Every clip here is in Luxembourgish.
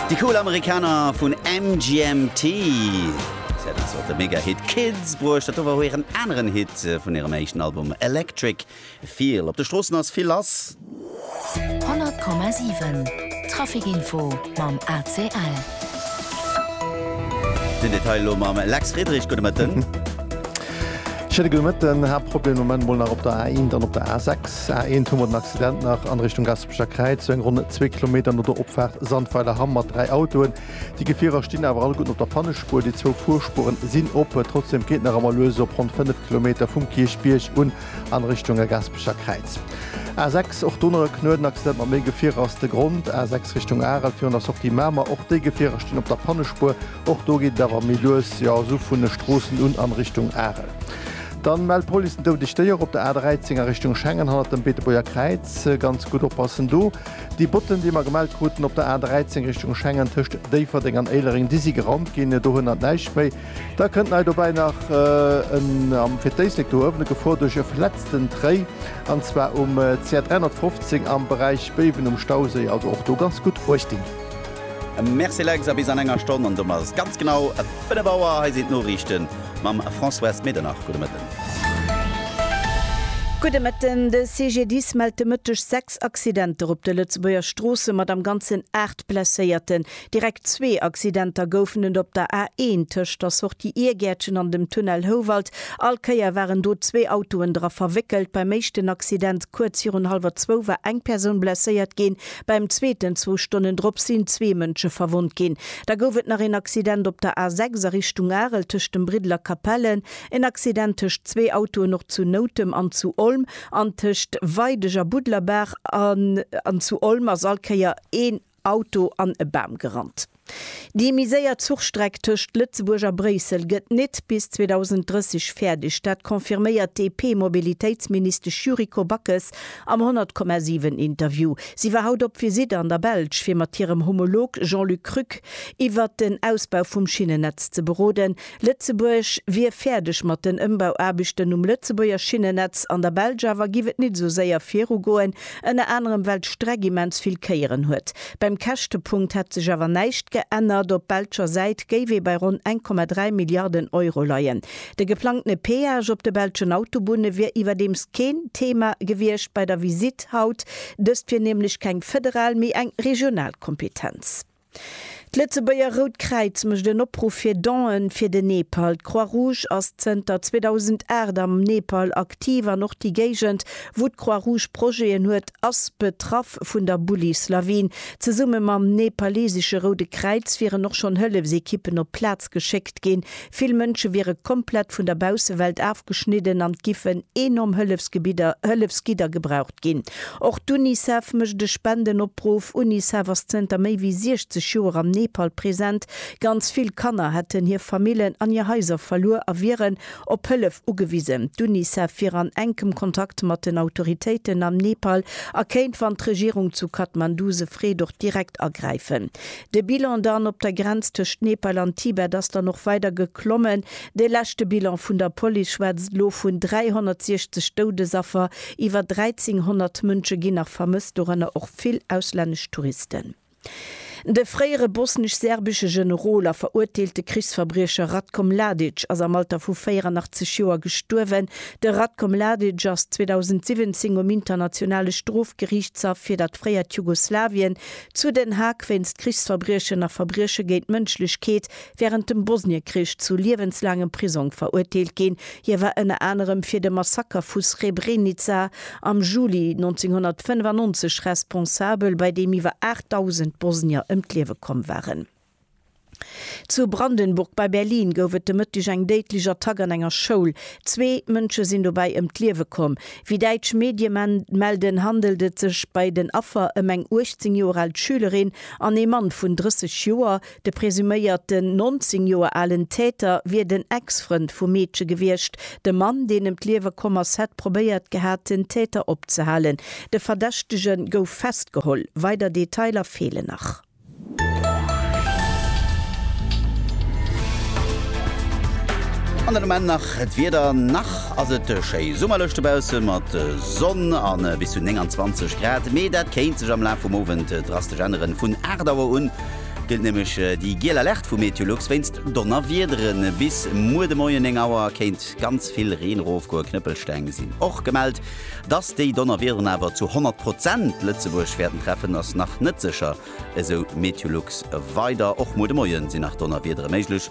Déi cool Amerikaner vun MGMT, si haten zwar de Mega-Hit Kids bruecht, dat do war hiren aneren Hit vun hirem éischten Album Electric Feel. Op de Stroossen ass vill lass. 100,7 Traficinfo mam ACL. Den Detail elo mam Lex Friedrich. Gudde Mëtten. Schéine gudde Mëtten. Haaptproblem de Moment mol nach op der A1 an op der A6. A1 hu mer den Accident nach an Richtung Gaspésie. D'Eebecher Kräizung, ronn zwee Kilometer no der Opfaart Sandweiler Hamm, mat dräi Autoen. Déi Gefierer stinn awer alleguerten op der Pannespuer. Déi zwou Fuerspueren sinn op. Trotzdeem geet nach ëmmer lues op ronn 5 Kilometer vum Kierchbierg un an Richtung Gaspecher Kräiz. A 6, och do nach e knueden Accident mat méi Gefierer ass de Grond. A 6 Richtung Arel virun der Sortie Mamer, och déi Gefierer stinn op der Pannespuer. Och do geet et awer méi lues, jo, esou vun de Stroossen un an Richtung Arel. Dann mellt d'Police en doudeg Déier op der A13 a Richtung Schengen hannert dem Beetebuerger Kräiz. Ganz gutt oppassen do. Déi Botten, déi mer gemellt kruten op der A13 Richtung Schengen tëscht Déifferdeng an Éilereng, déi si geraumt ginn, do hënnert näischt méi. Da kënnt nei dobäi nach en am fir d'Éislek do uewen e Gefor duerch e verletzten Tréi, an zwar um CR 315 am Beräich Béiwen um Stauséi, also och do ganz gutt uecht dinn. Merci Lex, a bis an enger Stonn, an domat ass et ganz genau 5 Auer. Hei sinn d'Noriichten mam Françoise Medernach. Gudde Mëtten. Gudde Mëtten. De CGDIS mellt de Mëtteg 6 Accidenter op de Lëtzebuerger Stroosse mat am Ganzen 8 Blesséierten. Direkt zwee Accidenter goufen et op der A1 tëscht der Sortie Iergäertchen an dem Tunnel Houwald. All Kéier waren do zwee Autoen dra verwéckelt. Beim éischten Accident kuerz virun hallwer zwou war eng Persoun blesséiert ginn, Beim zweeten, zwou Stonnen drop, sinn zwee Mënsche verwonnt ginn. Da gouf et nach een Accident op der A 6 a Richtung Arel tëscht dem Briddel a Capellen, en Accident tëscht zwee Autoen och zu Noutem an zu Olm an tëscht Weideg a Buddlerbaach an zu Olm ass all Kéier een Auto an e Bam gerannt. Déi méi séier Zuchstreck tëscht Lëtzebuerg a Bréissel gëtt nit bis 2030 fäerdeg. Dat confirméiert d'DP-Mobilitéitsministesch Yuriko Backes am 100,7 Interview. Si war haut op Visitt an der Belsch, fir mat hirem Homolog Jean-Luc Krück iwwert den Ausbau vum Schinnennetz ze beroden. Lëtzebuerg wier fäerdeg mat den Ëmbauaarbechten um Lëtzebuerger Schinnennetz, an der Belsch awer giff et nit esou séier virugoen, ënner anerem well d'Streck immens vill Kéieren huet. Beim Käschtepunkt hätt sech awer näischt geännert, op belscher Säit géif ee bei ronn 1,3 Milliarden Euro leien. De geplangtene Peage op de belschen Autobunne wier iwwerdeems keen Thema gewiescht bei der Visitt haut, dëst wier nämlech keng federal, mee eng regional Kompetenz. D'Lëtzebuerger Rout Kräiz mécht en Opruff fir Donen fir den Nepal. D'Croix-Rouge ass zënter 2008 am Nepal aktiv an och déi Géigend, wou d'Croix-Rouge Projeten huet, ass betraff vun der Bullislawin. Zesumme mam nepalesesche Roude Kräiz wieren och schonn Hëllefsekippen op d'Plaz geschéckt ginn. Vill Mënsche wiere komplett vun der Baussewelt afgeschnidden an et giffen enorm Hëllefsgebidder, Hëllefsgidder, gebraucht. Ginn. Och d'UNICEF mécht e Spendenopruff. Unicef ass zënter méi wéi 60 Joer am Nepal present. Ganz vill Kanner hätten hir Famillen an hir Haiser verluer a wieren op Hëllef ugewisen. D'UNICEF wier an enkem Kontakt mat den Autoritéiten am Nepal a kéint, wann d'Regierung zu Kathmandu se freet, och direkt agräifen. De Bilan dann op der Grenz tëscht Nepal an Tibet ass dann och weider geklommen. De leschte Bilan vun der Police schwätzt elo vun 360 Doudesaffer. Iwwer 1.300 Mënsche ginn nach vermësst, dorënner och vill auslännesch Touristen. De fréiere bosnesch-serbesche Generol a veruerteelte Krichsverbriecher Ratko Mladic ass am Alter vu 84 Joer gestuerwen. De Ratko Mladic ass 2017 um Internationale Strofgeriichtshaff fir dat fréiert Jugoslawien zu Den Haag wéinst Krichsverbriechen a Verbrieche géint d'Mënschlechkeet wärend dem Bosniekrich zu liewenslaangem Prisong verurteelt ginn. Hie war ënner anerem fir de Massaker vu Srebrenica am Juli 1995 responsabel, bei deem iwwer 8.000 Bosnier ëm d'Liewe komm waren. Zu Brandenburg bei Berlin gouf et de Mëtteg eng déidlech Attack an enger Schoul. Zwee Mënsche sinn dobäi ëm d'Liewe komm. Wéi däitsch Medie melden, handelt et sech bei den Affer ëm eng 18 Joer al Schülerin an ee Mann vun 30 Joer, De presuméierten 19 Joer alen Täter wier den Ex-Frënd vum Meedche gewiescht. De Mann, deen ëm d'Liewe komm ass, hätt probéiert gehat, den Täter opzehalen. De Verdächtege gouf festgeholl. Weider Detailer feelen nach. An den Ament nach d'Wieder, Nach ass et schéi summerlech dobausse mat Sonn a bis zu 29 Grad, mee dat kéint sech am Laf vum Owend drastesch änneren. Vun 8 Auer un gëllt nämlech déi giel Alerte vu Meteolux wéinst Donnerwiederen. Bis muer de Moien 9 Auer kéint ganz vill Reen erofgoen. Knëppelsteng sinn och gemellt. Dass déi Donnerwiederen awer zu 100 Prozent Lëtzebuerg wäerten treffen, ass nach net sécher, esou Meteolux weider. Och muer de Moie si nach Donnerwiedere méiglech.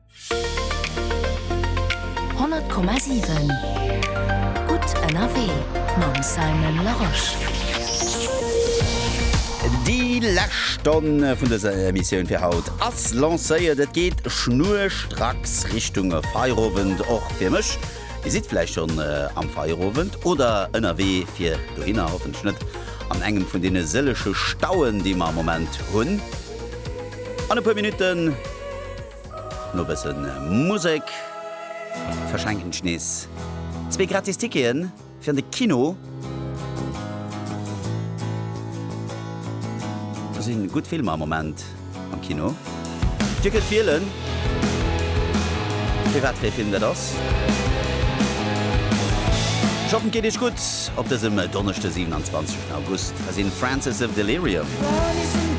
100,7 Gutt ënnerwee mam Simon Larosche. Déi lescht Stonn vun dëser Emissioun fir haut ass lancéiert. Et geet schnurstracks Richtung Feierowend, och fir mech. Dir sidd vläicht schonn am Feierowend oder ënnerwee fir dohinner, hoffentlech net an engem vun deene sëllege Stauen, déi mer am Moment hunn. An e puer Minutten. No bësse Musek verschenken ech nees zwee gratis Ticketen fir an de Kino. Do si gutt Filmer am Moment am Kino. Dir kënnt wielen, fir wat fir ee Film dat ass. Ech hoffen, et geet Iech gutt op dësem Donneschde, 27 August. Hei sinn Francis of Delirium.